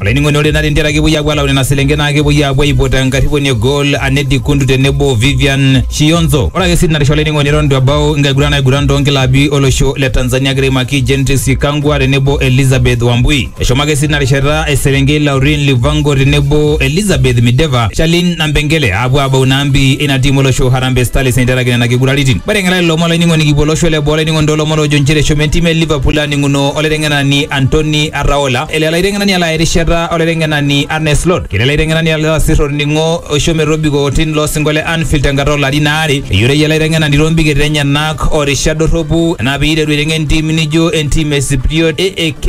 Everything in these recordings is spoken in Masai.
Olainining'oni ore ina rindera kepuoi aapuo alau nena selenken naa kepuoi aapuo aipot enkarriponi e goal Anedi Kundu tenebo o Vivian Shionzo. Ore ake sii tinarisha olainining'oni eton eitu ebau enkiguran naiguran too nkilabi olosho le Tanzania egira aimaki Gentrix Shikangwa tenebo Elizabeth Wambui. Eshomo ake sii tina rishata eselenkei Laureen Livango tenebo Elizabeth Mideva, Charlene Nampengele aapuo aabau ina ampi eina tiim olosho Harambee Starlets eiterakini nena kiguraritin. Mateng'ela lelo omon olainining'oni kipuo olosho le boo olainining'oni too lomon oojo nchere eshomo entim e Liverpool aaning'uno olaiteng'enani Antony ataola ele laitengenani ala erishata olaitengenani Arne Slot kile laitengenani ala oasir olning'o oisho metobiko tin lo singo le Anfield tenkata olarin aare eyioloi ele aitengenani toombiket enyenak o rishat dorropu naa peiteru aitengen ntimi nijo entim e Sipriot AAK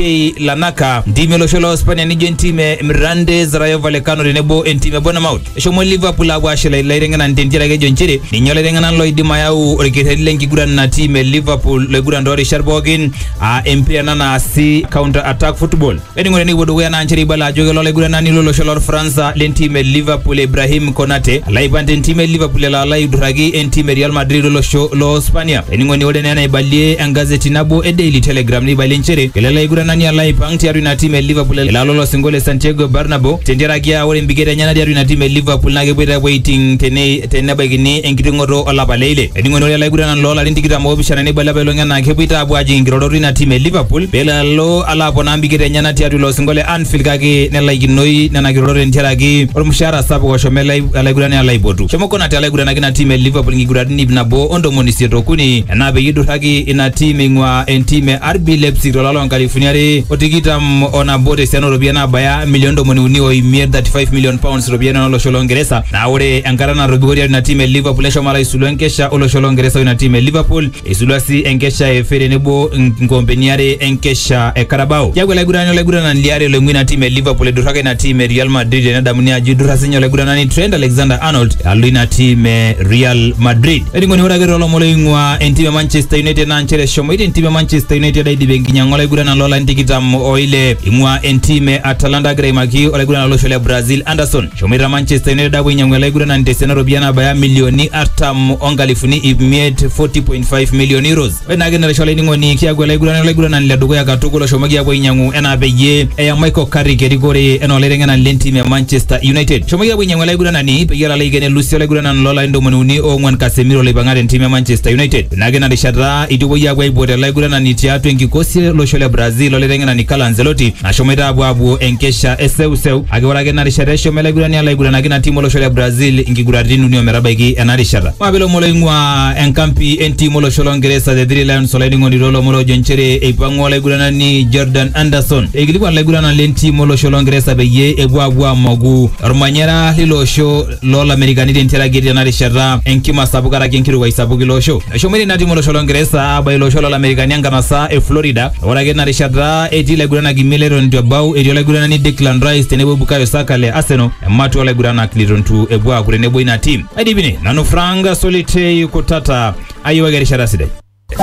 Lanaka ntimi olosho loo Spania nijo entim e Mirandes Rayo Vallecano tenebo entim e Bournemouth eshomo Liverpool aapuo aashila ilo aitengenani tentiaraki ejo nchere ninye olaitengenani loidim ayau olkerreti lenkiguran ina tim e Liverpool loiguran toorishat pookin aa empira ena naasi counter attack football ening'ore nikipuo dukuya naa nchere ibala ajo kelo olaiguranani lolosho lorfaransa lentim e liverpool ibrahim konate alo aipang tentim e liverpool elo alo aidurraki entim e real madrid olosho loo spania ening'oni ore naa enaibalie engazeti nabo e daily telegram neibalie nchere kelo ele aiguranani alo aipang tiatua ina tim e liverpool elo alo olosingo le santiago bernabo tentiaraki aa ore embiketa enyena tiatua ina tim e liverpool naa kepuoito apuo aiting tene- tenebaikini enkiting'oto olapa le ile ening'oni ore olaiguranani loolarin tikitam oopishana neibala apailong ena naa kepuoita apuo ajing inkirorot ina tim e Liverpool pelo alo alo aponaa mbiketa enyena tiatua ilo osinko le Anfield kake nelaikinoi nena kirorot entiaraki olmushaara sapuk oshomo ele alaigurani alo aipotu. Shomo Konate alo aiguranaki ina tim e Liverpool inkiguratin iip nabo o ntomoni isiet o kuni enaa peyie eidurraki ina tim eing'uaa entim e RB Leipzig to lari loo nkalifuni are o tikitam o nabo te siana oo ropiyiani naabaya milioni ntomoni uni o imiet, £35 million, iropiyiani oo losho loo Ngeresa. Naa ore enkata natobiko tiatua ina tim e Liverpool neshomo alo aisulu enkesha o losho loo Ngeresa o ina tim e Liverpool. Eisulua sii enkesha e FA tenebo nkoompeni are enkesha e Carabao. Keaku olaigurani olaiguranani liare loing'ua ina tim e Liverpool eiduraka ina tim e Real Madrid tenedamuni ajo eidurra sinye olaiguranani Trent Alexander-Arnold alo ina tim e Real Madrid. Olainining'oni ore ake toolomon oing'ua entim e Manchester United naa nchere eshomoita entim e Manchester United aidip enkinyang'a olaiguranani loolarin tikitam o ile eing'ua entim e Atalanta agira aimaki olaiguranani lolosho le Brazil Anderson. Eshomoita Manchester United apuo ainyiang'u ele aiguranani tesiana ropiyiani nabaya milioni artam onkalifuni ip miet 40.5 million euros. Ore naake enaisho olainining'oni kiaku ele aiguranani olaiguranani le dukuya katukul oshomoki apuo ainyiang'u enaa peyie eya Michael Carrick erikore enaa olaiteng'enani lentim e Manchester United. Eshomoki apuo ainyiang'u ele aiguranani peyie elo alo aiken elusi olaiguranani loolarin ntomoni uni oong'wan Casemiro loipang'a tentim e Manchester United. Ina ake ina rishata eidipuoi aapuo aipot ele aiguranani tiatua enkikosi e losho le Brazil o laiteng'enani Carlo Ancelotti nashomoita aapuo aapuo enkesha e seuseu kake ore ake ina rishata eshomo ele aigurani alo aiguranaki ina tim o losho le Brazil inkiguraritin uni o metabaiki ena rishata. Maape ilomon looing'uaa enkampi e ntim o losho lo Ngeresa The Three Lions Olainining'oni too lomon oojo nchere eipang'ua olaiguranani Jordan Anderson eikilikuan ilaiguranak le ntim o losho lo Ngeresa peyie epuo aapuo aamoku olmanyara leilo osho loo Lamerikani tentiaraki etii tena rishata enkima sapuk karaki enkirowuaj sapuk ilo osho. Eshomoita ina tim olosho Longeresa aabaiki ilo osho loo Lamerikani enkanasa e Florida. Ore ake tina rishata etii ilaiguranak imiet leton eitu ebau, etii olaiguranani Declan Rice tenebo Bukayo Saka le Arsenal ematua olaiguranak leton eitu epuo aaku tenebo ina tim. Aidipine nanu Frank Solitei kutata, ayiewaki erishata sidai.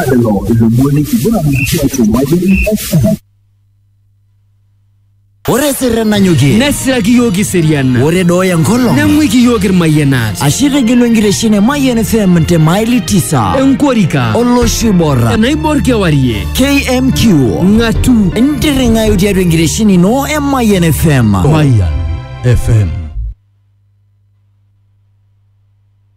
Lelo ilomon lenkiguran tiatua Mayian FM. Ore sirre nanyokie. Nesiraki iyiook iseriana. Ore dooyo enkolong. Neng'uiki iyiook irmayianat. Ashe itegelu enkitesheni e Mayian FM te maili tisa. Enkorika. Olosho oibor. Enaibor kewarie. KMQ. Ng'atu. Intirring'ayu tiatua enkitesheni ino e Mayian FM. Mayian FM.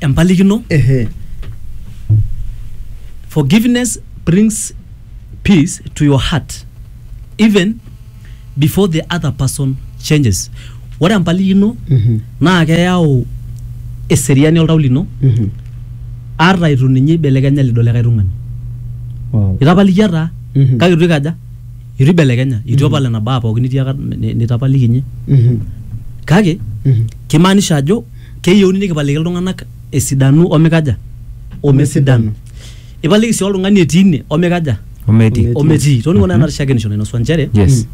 empalikino Ehe. forgiveness brings peace to your heart even before the other person changes ore empalikino Mhm. naa keyau eseriani oltau lino Mhm. ata itu ninye ibelekenya lido likae tung'ani Wow. itapalikia taa Mhm. kake itu ikaja itu ibelekenya itu epal nena baa pookin nitiaka ni- nitapalikinye Mhm. kake Mhm. kimaanisha ajo Keyieuni nikipaliki iltung'ana esidanu omeikaja? Omesidanu. Ipaliki sii oltung'ani etii ine omeikaja? Ometii. Ometii. Toning'o naa ena rishakenoisho nainosua nchere Yes.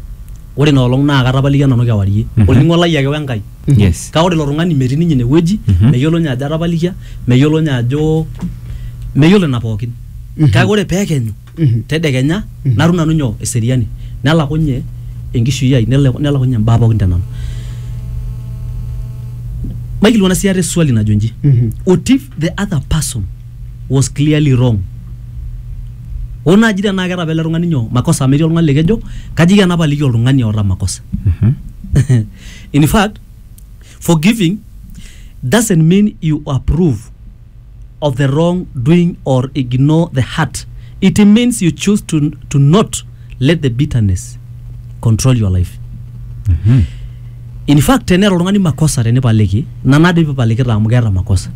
ore ina olong naa katapalikia nanu kewarie. Mhm. Olning'o lai ake we Nkai. Yes. Kake ore ilo tung'ani metii ninye ine wueji, Mhm. meyiolo ninye ajo atapalikia, meyiolo ninye ajo, meyiolo ina pookin. Mhm. Kake ore pee ekenyu Mhm. tedekenya natum nanu nyoo eseriani nelakunye enkishui ai nele- nelakunye imbaa pookin tenanu maikilikuana sii ate swali najo nji Mhm. what if the other person was clearly wrong oo naaji tenaa keeta apa ele tung'ani nyoo makosa amu etii oltung'ani likejo kaji kena paliki oltung'ani oota makosa in fact forgiving doesn't mean you approve of the wrong doing or ignore the hurt. It means you choose to, to not let the bitterness control your life. In fact, tenera oltung'ani makosa tenipaliki, nanare pipalikita amu keeta makosa.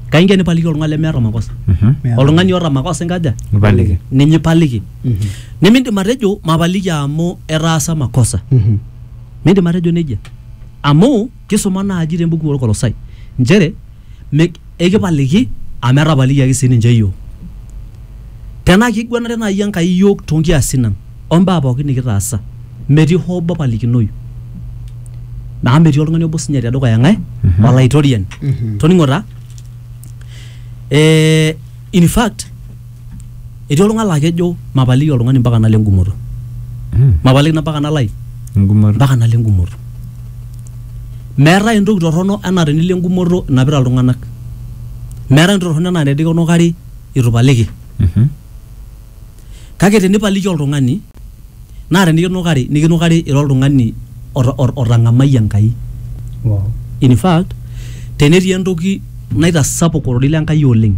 Kaingia nipaliki oltung'ani lemeeta makosa. Oltung'ani oota makosa enkaja? Nipaliki. Ninye ipaliki. Nimindim atejo mapaliki amu etaasa makosa. Mindim atejo nejia. Amu Kisuma naaji te mbuku olkolosai nchere mi eikipaliki amu etapalikiaki sii ninche iyiook. Tenaa keiguanare naai Enkai iyiook too nkiasin ang o mbaa pooki nikitaasa metii hoo obo opalikinoyu. Amu metii oltung'ani obo sinyati te dukuya ng'ae? Olaitoriani. Toning'o taa, ee in fact Etii oltung'ani laa kejo mapaliki oltung'ani mpaka nalo engumoto. Mapaliki na mpaka nalo ai? Engumoto. Mpaka nalo engumoto. Meetae entoki torrono enaa tenilo engumoto inapita iltung'anak. Meetae entoki torrono enaa tenikinukari itu ipaliki. Kake tenipaliki oltung'ani. naa tenikinukari nikinukari ira oltung'ani ota- ot- otang'amayie Enkai Wow. in fact tenetii entoki naitasapuk ororei le Nkai oleng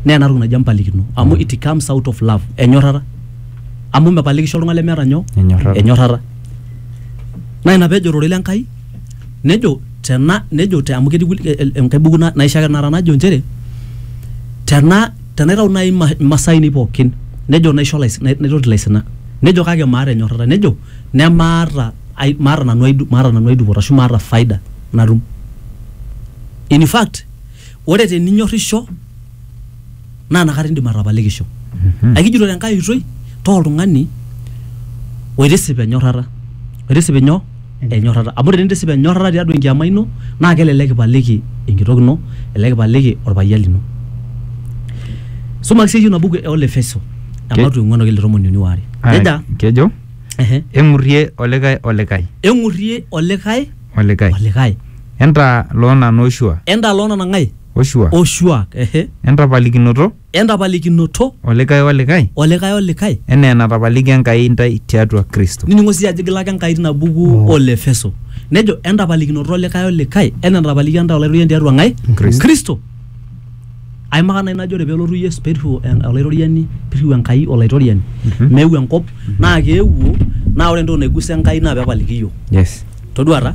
naa ena toki naji empalikino amu it comes out of love enyorrata amu mepalikisho oltung'ani lemeeta nyoo Enyorrata. enyorrata naa ina peejo ororei le Nkai nejo tena nejo te amu ketii kulie- e- e- enkae buku na- naisho ake tenakata najo nchere tena Tenaitau naaji ima- imasaa ainei pookin nejo naisho ilais- nai- naitoti ilaisinak nejo kake maata enyorrata nejo nemaata ai maata nanu ai du- maata nanu ai dupoto ashu maata faida natum in fact ore teninyorrisho naa inakata indim atapalikisho aikijito tenkae oitoi taa oltung'ani oitisip enyorrata oitisip inyoo enyorrata amu tenintisipa enyorrata tiatua enkiama ino naa kelelek ipaliki enkitok ino elelek ipaliki orpayian lino sumaki siiyie ina buku e Olefeso Ke- ematu eng'uan okile tomoni uni waare Ah, nejia kejo ehe, eng'urrie olikae olikae eng'urrie olikae olikae olikae entaa loona nooshua entaaloo nanang'ae oshuak oshuak ehe entapalikinoto entapalikinoto. Olikae olikae. Olikae olikae. Enaa enatapalikia Enkai intae tiatua Kristo. Nining'o sii ajo igila ake Enkai tina buku o Lefeso. Nejo entapalikinoto olikae olikae enaa enatapalikia intae Olaitoriani tiatua ng'ae? Kristo. Kristo. Aimaka nai najo ore pelotu Yesu peirriu Olaitoriani peirriu Enkai Olaitoriani meeu enkop naa keewuo naa ore entoki naigusa Enkai naa pepaliki iyiok. Yes. Toduaa taa.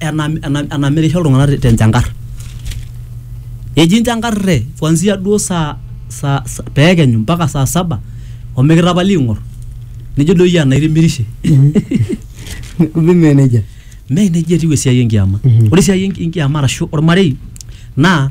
enam- enam- enamirisho iltung'anak te- tenchankar eji nchankare kwanzia duo saa saa sa- peekenyu mpaka saa saba omikitapali ing'or nijo doi iyie anaa itimirishe kumbe mee nejia mee nejia etiu esiai enkiama Mhm. ore esiai enki- enkiama arashu ormarei naa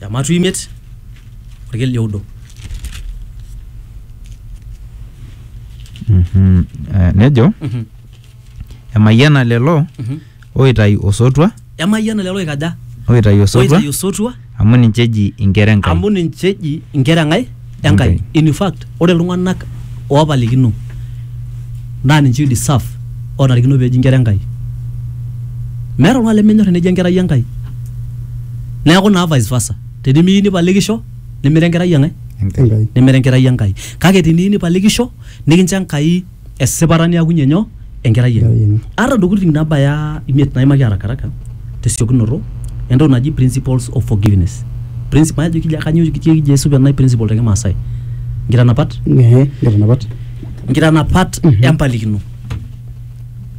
ematu imiet orkel oudo Mhm. Eh, nejo Mhm. emayiana lelo Mhm. oitayu osotua emayiana lelo oikaja oitayu osotua oitayu osotua amu ninche eji inkera enkai amu ninche eji inkera enkai Enkai. In fact, ore iltung'anak oopalikino naa ninche oi deserve ootarikino peeji inkera Enkai. Meeta oltung'ani lemenyor eneji enkerai Enkai. Neeku naa vice versa. Tenimiyieu nipalikisho nimira enkerai eng'ae? Enkai. Nimira enkerai Enkai. Kake teniyieu nipalikisho nikincho Enkai esipata niakunye nyoo enkerai enye Enkerai enye. ata ntokitin nabaya imiet naimaki arakaraka tesiokinoto entoki naji principles of forgiveness Princi- majo kija kanyo kija kija esupa ena principle te kimaasai nkitanapat Ehe, nkitanapat. nkitanapat Mhm. empalikino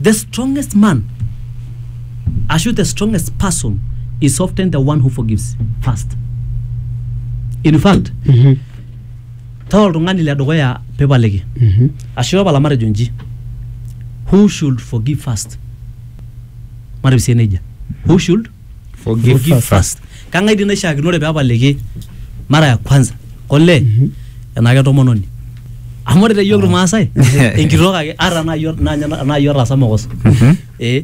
the strongest man ashu the strongest person is often the one who forgives first in fact Mhm. taa oltung'ani le dukuya pipaliki Mhm. ashu tapala matejo nji who should forgive first matejo sie nejia who should Forgive first. kang'ae dii naishiakinore pepaliki mara ya kwanza kole enaa ketomononi amu ore te yiok irmaasai enkitok ake ata naa yiok naa nye- naa yiok otaasa mokoso eh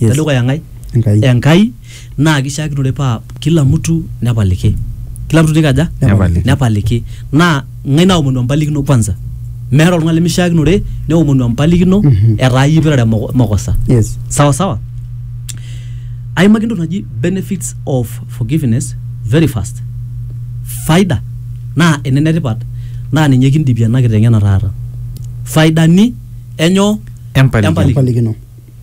Yes. tedukuya ng'ae Enkai. enkai naa kishiakinore paa kila mtu nepaliki kila mtu nikaja Nepaliki. nepaliki naa ng'ae naomonu empalikino kwanza meeta oltung'ani lemishiakinore neomonu empalikino Mhm. etaa yie ipirare moko- mokosa Yes. sawa sawa aimaki entoki naji benefits of forgiveness very fast faida naa ene netipat naa ninye kindipie ena kiteng'ena taata faidani enyo Empalikino. Empalikino.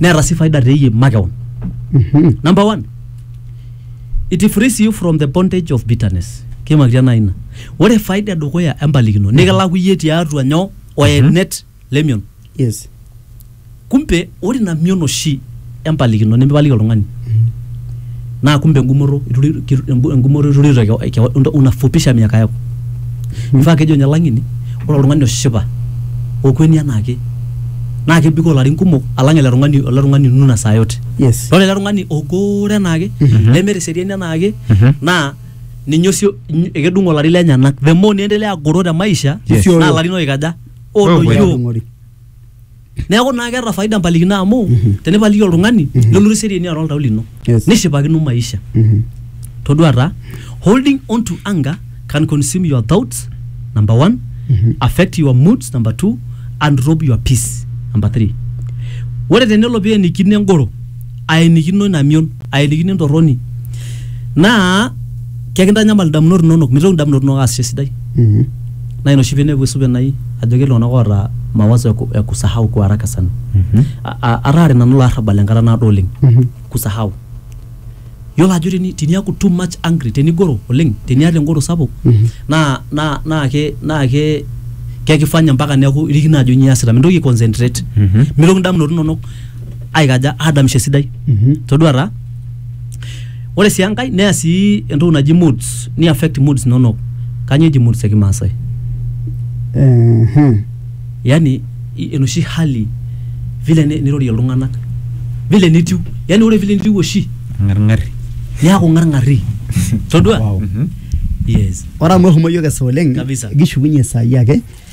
neeta sii faida teyie makeon Mhm. number one it frees you from the bondage of bitterness kimakitia naa ina ore faida edukuya empalikino nikilaku iyie tiatua nyoo oenet lemion Yes. kumpe ore ina mion oshi empalikino nimipaliki oltung'ani naa kumbe engumoto engumoto iturito keon unafupisha miaka yako mifaa kejo ninye lang'eni ore oltung'ani oshipa okueni anaake naa kebikoo ilarin kumok alang ele tung'ani ele tung'ani onuna saa yote Yes. ore ele tung'ani ogoore anaake nemeeta eseriani anaake naa ninye osio ny- ekedung olari lenyenak the more niendelea agoro te maisha Yes. naa ilarin oikaja Odoyio. odoyio Odung'ori. neeku naa keeta faida mpalikino amu tenipaliki oltung'ani nelotu seriani atua oltau lino Yes. nishipakino maisha Mhm. todua taa holding on to anger can consume your thoughts number one affect your moods number two and rob your peace number three ore tenelo peenikino engoro aenikino ina mion aelikino entorroni naa kekintanyamal indamunot inonok mitoki indamunot inonok aasisho esidai Mhm. naa ina oshi piinepu esupe nai ajo ketii iltung'anak oota mawazo ya ku- ya kusahau kwa haraka sana A- a- ataare nanu ilo arrabal enkata naado oleng Mhm. kusahau yiolo ajo teni- teniaku too much angry tenigoro oleng teniata engoro sapuk Mhm. naa naa naa ke naa ke kekifanya mpaka neeku irikino ajo nyoo iasita mintoki aiconcentrate Mhm. mitoki indamunot inonok aikaja adamisho esidai Mhm. todua taa ore sii enkae neya sii entoki naji moods ni affect moods inonok kanyoo eji moods ekimaasai Ehe. yani i- enoshi hali vile ni- nirorie iltung'anak vile nitiu yani ore vile nitiu oshi ng'arng'ari niaku ng'arng'ari todua Wow. yes Ore amu ehomo yiok esaa oleng Kabisa. kishukunye saai ake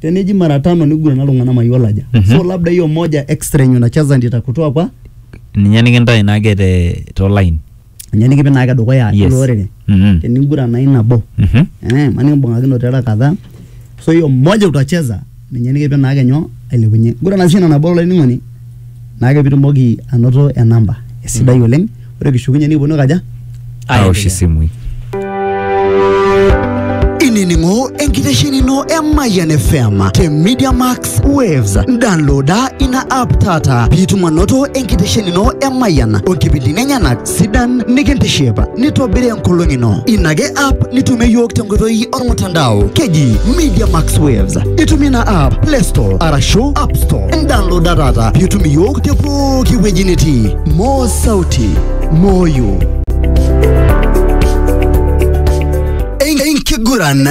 teneji mara tano nigurana iltung'anak mayiolo aja Mhm. so labda hiyo moja extra yenye unacheza ndio itakutoa kwa ninye nikintae naake te to line ninye nikipik naake dukuya Yes. ilo orere Mhm. tenigurana hii nabo Mhm. eh, maana imbung'akino tera kadhaa so hiyo moja utacheza ninye nikipik naake nyoo ailepunye gurana sii ina nabo olainining'oni naa ore pitumoki anoto enamba esidai oleng ore kishukunye nikiponu aikaja aosh isimui inining'o enkitesheni ino e Mayian FM te Media Max Waves. Downloada ina app taata piitum anoto enkitesheni ino e Mayian o nkipindini enyenak sidan nikintiship nitobiri enkolong ino ina ake app nitumie yiok tenkoitoi ormutandao keji media max waves itumie ina app play store arashu app store indownloada taata piitum iyiok te pooki wueji nitii moo sauti moyo enkiguran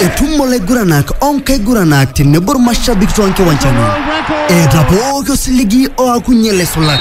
etumo laiguranak onkaiguranak tenebo irmashabik toonkiwanjani eeta pooki osiligi oakunye laisulak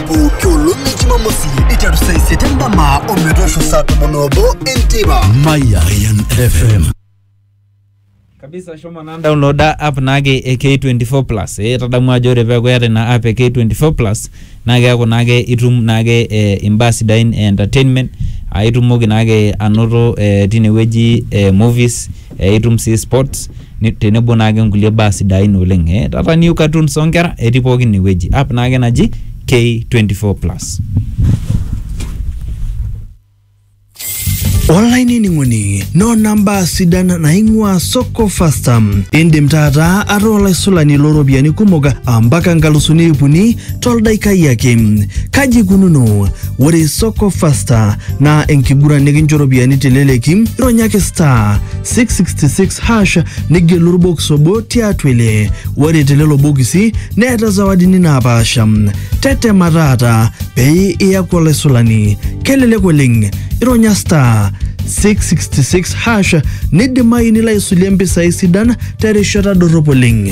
pooki olong e jumamosi iteru saa isiet endama o metoosho saa tomon oobo enteipa Mayan FM. kabisa shomo naa downloada app naake e K24 plus eh, tadamu ajo ore peeku eeta ina app e K24 plus naa keeku naake itum naake eh, imbaa sidain e entertainment aitumoki naake anoto eh, tinewueji eh, movies eh, itum sii sports ni- tenebo naake nkulie baa sidain oleng eh, taata new cartoons oonkera etii pooki inewueji app naake naji K24 plus olainining'oni noo namba sidan naing'ua soko fasta indim taata ataa olaisulani looropiyiani kumok ampaka nkalusuni ip uni toldaikai ake. Kaji ikununo? Ore Soko Fasta naa enkiguran nikincho ropiyiani teleleki, ironyaki star 666 hash nigelu orbokis obo tiatua ile. Ore telelo bokisi neeta zawadini naapaasha. Tetema taata pee iyaku olaisulani. Kelelek oleng, ironya star 666 hash nidimayu nilo aisulie mpisai sidan terishata dorrop oleng.